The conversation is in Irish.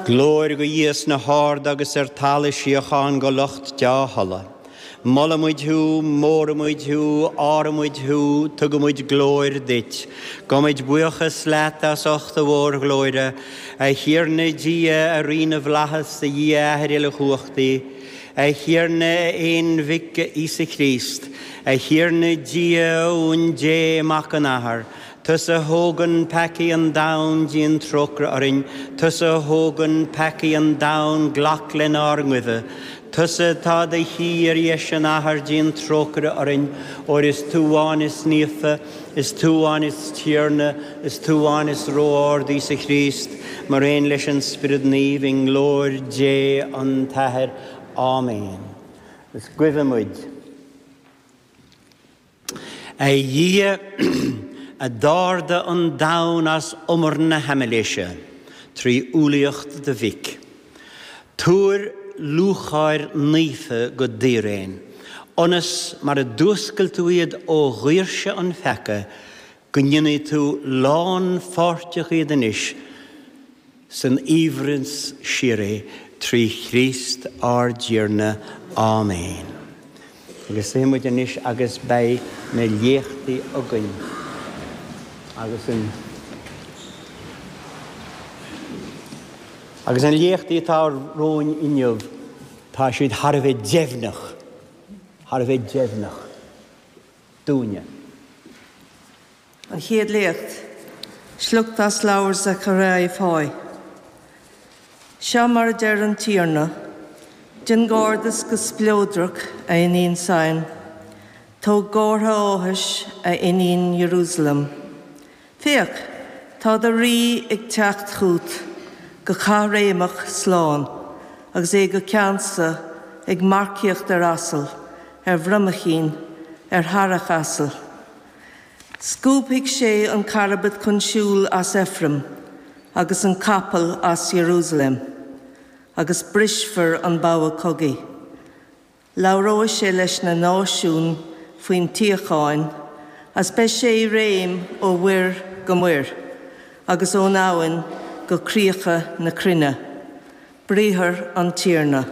Glóir go Dhia sna harda agus ar talamh síocháin go lucht deá-thola. Molaimid thú, móraimid thú, adhraimid thú, tugaimid glóir duit. Gabhaimid buíochas leat as ucht do mhórghlóire, a Thiarna Dia, a Rí na bhFlaitheas, a Dhia, a Athair Uilechumhachtaí, a Thiarna a Aonmhic, a Íosa Críost, a Thiarna Dia, Uan Dé, Mac an Athar, Tusa a thógann peacaí an domhain, déan trócaire orainn. Tusa a thógann peacaí an domhain, glac lenár nguibhe. Tusa atá i do shuí ar dheis an Athar, déan trócaire orainn, óir is tú amháin is naofa, is tú amháin is Tiarna, is tú amháin is Ró-Ard, Íosa Chríost, mar aon leis an Spiorad Naomh, i nglóir Dé an tAthair. Áiméan. Is guibhe muid. A Dhia, a d'ardaigh an domhan as umar na haimiléise trí umhlaíocht do Mhic, tabhair lúcháir naofa go d'fhíréin, ionas, mar a d'fhuascail tú iad ó dhaoirse an pheaca, go ndéanfaidh tú lánpháirteach iad anois san aoibhneas síoraí trí Chríost ár dTiarna. Áiméin. Agus suífidh muid anois agus beidh na léachtaí againn agus an, agus na léachtaí atá romhainn inniu, tá siad thar a bheith deimhneach, thar a bheith deimhneach. dúinne. An Chéad Léacht. Sliocht as leabhar Zacharia Fáidh. Seo mar a deir an Tiarna, Déan gairdeas go spleodrach, a iníon Sion, tóg gártha áthais, a iníon Iarúsailéim. Féach, tá do rí ag teacht chút go caithréimeach slán, agus é go ceansa, ag marcaíocht ar asal, ar bhromaichín, ar shearrach asail. Scuabfaidh sé an carbad chun siúil as Ephraim, agus an capall as Iarúsailéim, agus brisfar an bogha cogaidh. Labhróidh sé leis na náisiúin faoin tsíocháin agus beidh sé i réim ó mhuir go muir agus ón abhainn go críocha na cruinne. Briathar an Tiarna.